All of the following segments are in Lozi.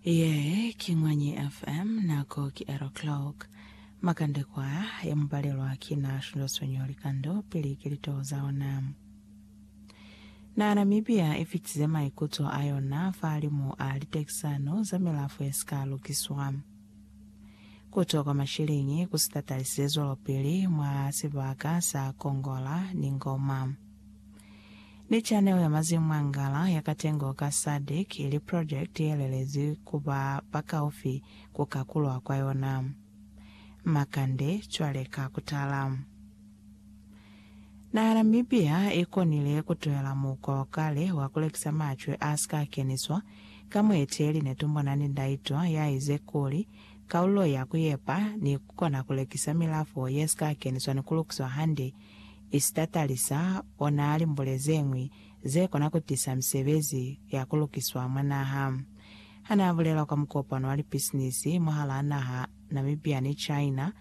Ye ki Mwanyi FM, nako ki 8 o'clock. Makande kwaya ya mupalelwa ki na shundwasonyo likando pili ki litoho za ona. Na Namibia i fitize maikuto a yona fahalimu a litekisano za milafo ye si ka lukiswa. Ku twa kwa mashilingi ku si tatalisize zwelopili mwa sibaka sa Kongola ni Ngoma. Ni chanelo ya Mazimu Mwangala ya Katengo ka Sadc ili project ye lelezi ku ba bakaufi ku kakulwa kwa yona. Makande, cwale ka ku tala. Naha ya Namibia i konile ku tuhela mukwa wa kale wa ku lekisa macwe a si ka keniswa, ka mueteli ne tumbona ni ndaitwa ya ize kuli, Kaululo ya ku yepa ni ku kona ku lekisa milafo ye si ka keniswa ni ku lukiswa hande, Isita Talisa o naa limbule ze ñwi ze kona ku tisa misebezi ya ku lukiswa mwa naha. Ha naa bulela kwa mukopano wa lipisinisi mwahalaa naha Namibia ni China,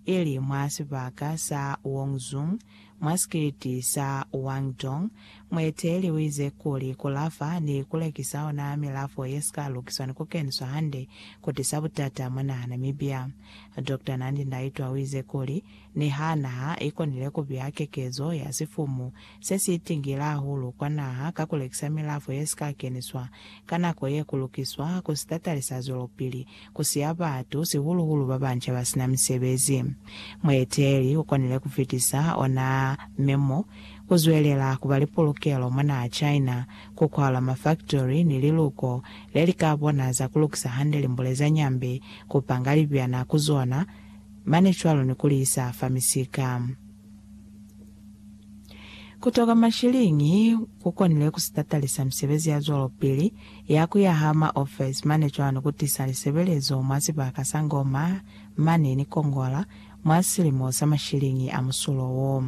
ili mwa sibaka sa Wongzhung, mwa sikiliti sa Wangdong, mueteeli u ize kuli ku lafa ni ku lekisa ona milafo ye si ka lukiswa ni ku keniswa hande ku tisa butata mwa naha Namibia. Doctor Nandi Ndaitwah u ize kuli, Niha naha i konile ku beya kekezo ya sifumu se si itingile hahulu kwa naha ka ku lekisa milafo ye si ka keniswa ka nako ye ku lukiswa ku sitatali sa zwelopili ku siya batu, sihulu-hulu ba banca ba si na misebezi. Mueteleli u konile ku fitisa ona memo ku zwelela ku ba li pulukelo mwa naha China, ku kwalwa mafaktori ni liluko le li ka bona za ku lukisa hande limbule za nyambe, ku panga libyana ku zona, Mane cwalo ni ku li isa fa misika. Ku toka mashiliñi ku konile ku sitatalisa misebezi ya zwalopili ya ku yaha maofesi mane cwalo ni ku tisa lisebelezo mwa sibaka sa Ngoma mane ni Kongola mwa silimo sa mashiliñi a musulo wo.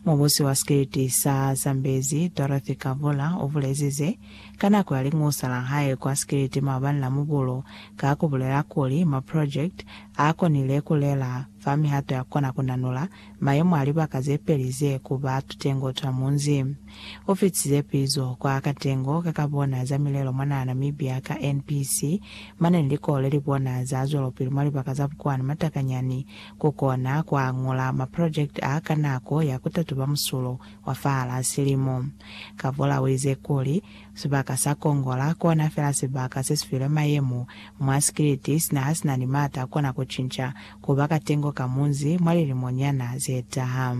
Mubusi wa sikiliti sa Zambezi, Dorothy Kavula, u bulezize ka nako ya liñusa la hae kwa sikiliti maabani la Mubulu ka ku bulela kuli, Maprojekiti Ha konile ku lela fa mihato ya kona ku nanula mayemo a libaka ze peli ze ku ba tutengo twa munzi. U fitize pizo kwa katengo ka ka bona za milelo mwa naha Namibia ka NPC, mane ni likolo le li bona za zwelopili mwa libaka za bukwani matakanyani, ku kona ku añula maprojekiti a ka nako ya ku tatuba musulo wa fahal'a silimo. Kavula u ize kuli, Sibaka sa kongola kona fela sibaka sesifilwe mayemo mwa sikiliti sina hasina ni mata akona kucinca kuba katengo ka munzi mwa lilimo nyana zetaha.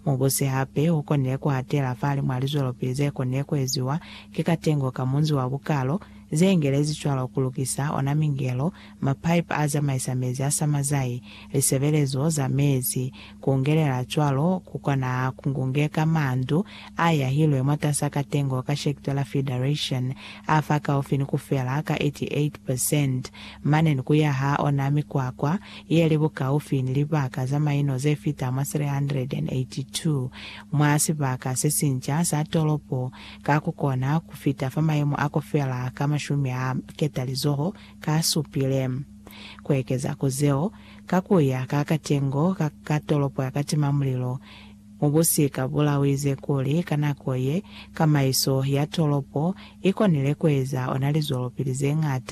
Mubusi hape ukonile kuhatela fahali mwa lizwelopili zekonile kueziwa ki katengo ka munzi wa bukalo, zeengelezi cwalo kulukisa ona mingelo Mapaipi a zamaisa mezi a samazai, lisebelezo za mezi, kungelela cwalo, kukona kungungeka mandu a yahilwe mwatasa katengo ka Shektola Federation a fa kaufi ni kufela ka 88 percent, mane ni kuyaha ona mikwakwa ye li bukaufi ni libaka za maino ze fita mwa 382 mwa sibaka se sinca sa tolopo, ka kukona kufita fa maimo a kufela ka mashumi a ketalizoho ka supile. Ku ekeza ku zeo, ka ku ya ka katengo ka ka tolopo ya katimamulilo, mubusi ka bula u ize kuli ka nako ye, kamaiso ya tolopo i konile ku eza ona lizwelopili ze ñata.